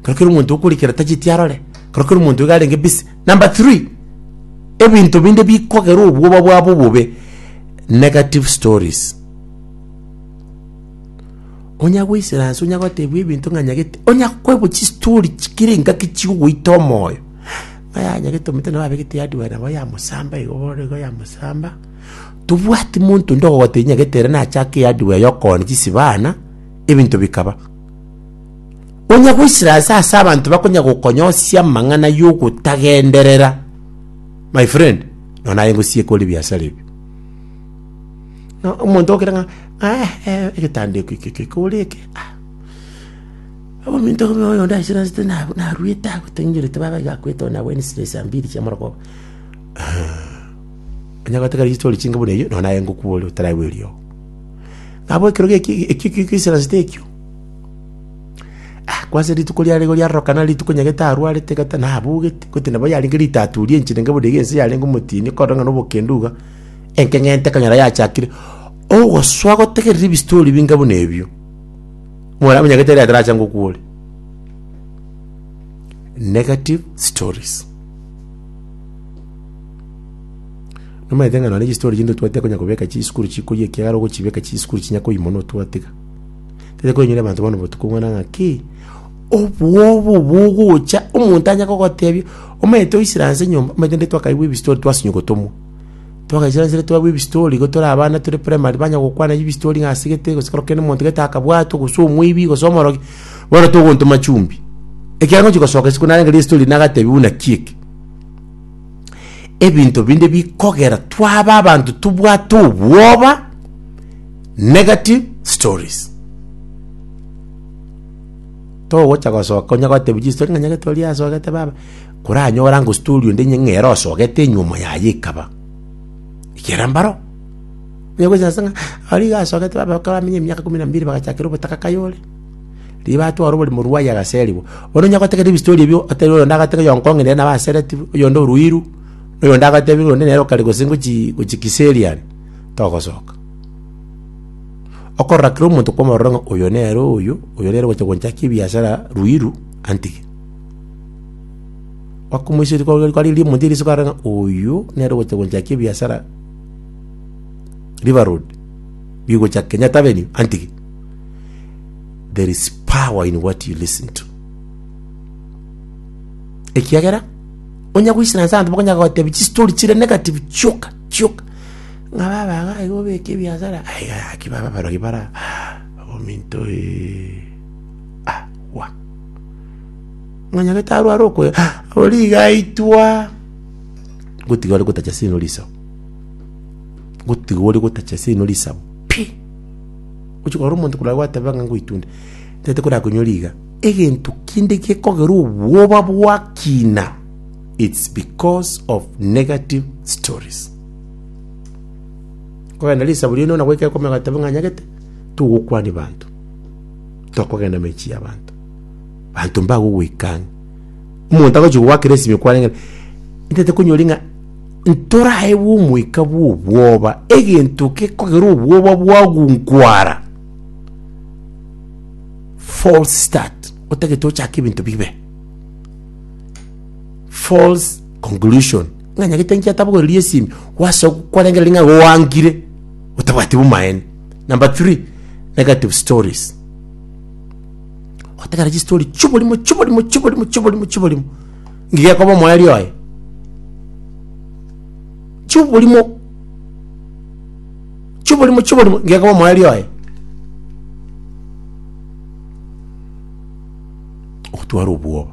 Ekero kera omonto okorikera tacheti arore, ekero kera omonto iga arenge busy. Number three, ebinto binde bikogera obwoba bwabo obobe, negative stories. Onya goisera nse, onya gotebwa ebinto ng'a nyagete, onya koebwa chistory chikere engaki chigogoita omoyo, ng'a yaya nyagete omonto nabo abegete hardware nabo yamosamba igo bono igo yamosamba, tobwati monto onde ogogotebia nyagete ere nachake ehardware ya okooni chisibana, ebinto bikaba. Onya goisira ase ase abanto bakonya gokonyosia amang'ana y'ogotagenderera, my friend, no naye ngosieka ore ebiasara ebio. No, omonto okere ng'a "Ah, eh, egetanda eke eke eke eke ore eke ah." Ominto obe oyo onde aisire asete na- naruete agotengerete baba iga akwete ona Wednesday saa mbiri chia amarogoba. Onya goeteka rigichi tori chinke buna eyio, no naye ngokwa ore otaraigwa eriogo. Nabo ekero geki eki eki eki oisiransete ekio, Ah, kwase rituko riare igo riarorokana rituko nyagete arwarete gata nabogete, gotenda nabo yarenge ritatu ria enchera enke boderia ense yarenge omotini okorora ng'a nobokenda iga, enkeng'ente ekonyora yachakire ogosoa gotegerera ebistori binga buna ebio, more abwo nyagete ere atarache ngokwa ore. Negative stories. Nomanyete ng'a nonye chistori chinde otwate okonya kobeka chisukuru chikoyia ekiagera ogochibeka chisukuru chinya koimono otwatiga. Tari koinyora abanto bono botuko buna ng'aki obwoba obo ogocha omonto anya kogotebia omanyete oisire anse nyomba omanyete nde twakaigwa ebistori twasinywa gotomwa. Twagaisire anse twabua ebistori igo tore abana tore primary banya gokwana ebistori ng'a ase gete gose kero kende omonto gete akabwatwa gose omweibi gose omorogi, bono togontoma chumbi. Ekiagera ngochi gosoka isiko narenge ristori nagatebiwa buna ki eke. Ebinto binde bikogera twaba abanto tobwate obwoba. Negative stories. Togocha gosoka onya gotebia chistori ng'a nyagete oria asogete baba. Koranyore ango story onde inye ng'ere osogete enyuomo yaye ekaba. Ekera mbaro. Onya gocha ase ng'a aria iga asogete baba ekero bamenyire emiaka ikomi na mibere bagachakera obotaka kaye ore. Riria batwara oborimo rwaye agaserigwa. Bono onya gotegerera ebistory ebio otebe oyonde agateba oyo nkong'e nere nabo asereti bo, oyonde oruiru, oyonde agateba oyonde nere okare gose ngochi gochi Kiserian, togosoka. Okorora kera omonto kwamorora ng'a oyo nere oyo, oyo nere ogocha gonchakia ebiasara ruiru, antige. Kwakomoiseria kware kwarigia rimonto riso kware ng'a oyo nere ogocha gonchakia ebiasara River Road, bigocha Kenyatta Avenue, antige. There is power in what you listen to. Ekiagera, onye goisana ase abanto bakonye gogotebi chistori chire negative chioka chioka. ng'a babe ang'e aye gobeka ebiasara, aiga yaki babe abarogi bare aa ominto eeh ah wa. Ng'a nyagete arware okoe ah oria iga aitwa, ngotiga ore gotacha sino risabu, ngotiga ore gotacha sino risabu pi, ochi korora omonto korwa gwateba ng'a ngoitunda, tete korakonyori iga, egento kende gekogera obwoba bwakina, it's because of negative stories. Kogenda risaburi ino na goika ekomeo agateba ng'a anyagete, togokwania banto, tokogenda emechie y'abanto, banto mbagogoika ang'e. Omonto agochi gogoakera esimi okwaneng'e, ntete konyori ng'a ntoraewe omoika bw'obwoba, egento gekogera obwoba bwagunkwara, false start, otagete ochake ebinto bibe, false conclusion. Ng'a nyagete inche atabogoreria esimi, gwase kwarengereri ng'a igo gwangire otabwati bomaene. Number three, negative stories. Gotegera chistory chi'oborimo chi'oborimo chi'oborimo chi'oborimo chi'oborimo ng'a iga ekoba omoerio oye. Chi'oborimo chi'oborimo chi'oborimo ng'a iga ekoba omoerio oye. Ogotwara obwoba.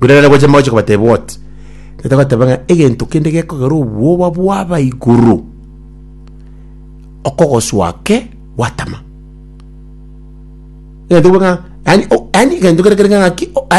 Rirorio naboiche mogochia kobatebia oti, Tata agateba ng'a egento kende gekogera obwoba bwaba igoro, okogoswa ake gwatama. Egento kebe ng'a yaani o- yaani egento kere kere ng'a ng'aki o- yaani.